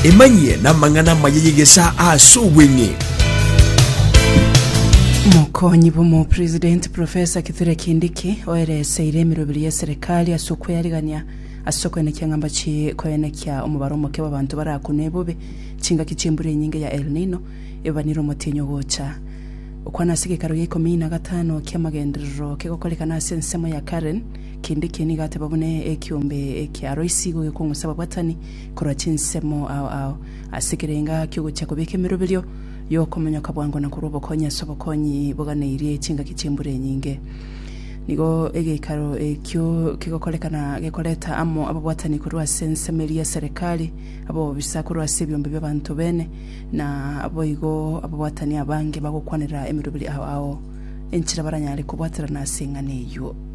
Emanyie namang'ana amaya y'egesaa ase obweng'e. Mokonyi bw'Omopresidenti Professor Kithure Kindiki oereseire emiroberi y'eserekari ase okweyarigania ase okoenekia ng'a mbachi koenekia omobaro omoke bw'abanto barakunwe bobe chingaki chi'embura enyinge ya El Nino ebabanire omotienyi ogocha okwana ase gekaro gia ikomi na gatano ki'amagenderero kegokorekana ase ensemo ya Karen Kende ekiya nigo ateba buna ekiombe ekia Loisi igo gekong'usa ababwatani korwa chinsemo ao ao, ase ekerenga ki'ogochia kobeka emeroberio y'okomonyoka bwango na korwa obokonyi ase obokonyi boganeirie chingaki chi'embura enyinge. Nigo egeikaro ekio kegokorekana gekoreta amo ababwatani korwa ase ensemo eria ya Serekari, abaobisa korwa ase ebiombe bi'abanto bene, na boigo ababwatani abange bagokwanera emeroberio ao ao enchera baranyare kobwaterana ase eng'ana eyio.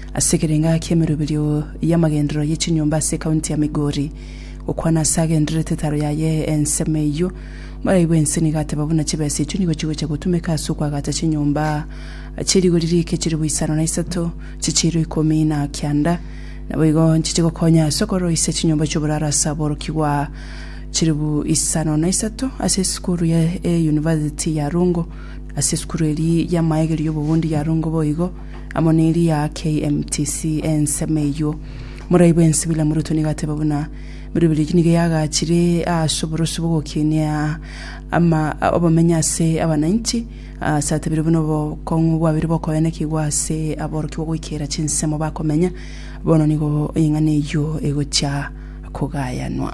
Ase ekerenga ki'emeroberio y'amagenderero ye chinyomba ase ekaunti ya Migori, gokwana ase agendererete etaro yaye ensemo eyio, morai bwensi nigo ateba buna chibesa echio nigo chigocha gotumeka ase okoagacha chinyomba chie rigori riike chilifu isano na isato chie chiiro ikomi na kianda, naboigo nchiche gokonya ase okoroisia chinyomba chi'oboraro ase aborokigwa chilifu isano na isato ase esukuru ya eyunivasiti ya Rongo, ase esukuru eria y'amaegeri y'obobundia ya Rongo boigo. amo ne eria KMTC ensemo eyio. Morai bw'ensibili na moruto nigo ateba buna Biribiri eki nigo yagachire ase oboroso bw'ogokinia ama obomenyo ase abananchi ase atebire buna obokong'u bwabire bokoenekigwa ase aborokia ogoikera chinsemo bakomenya bono nigo eng'ana eyio egochia kogayanwa.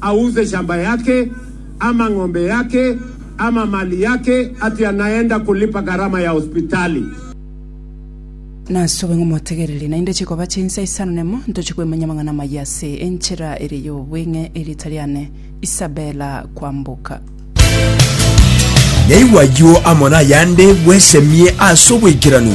Auze shamba yake, ama ng'ombe yake, ama mali yake ati anaenda kulipa gharama ya hospitali. Nasuba ng'a motegereri, naende chikoba chinsa isano nemo ntochia koimanya amang'ana amayia ase enchera eria y'obweng'e, erieta riane Isabella Kwamboka. Naigwa ayio amo nayande bwesemie ase obwaikeranu.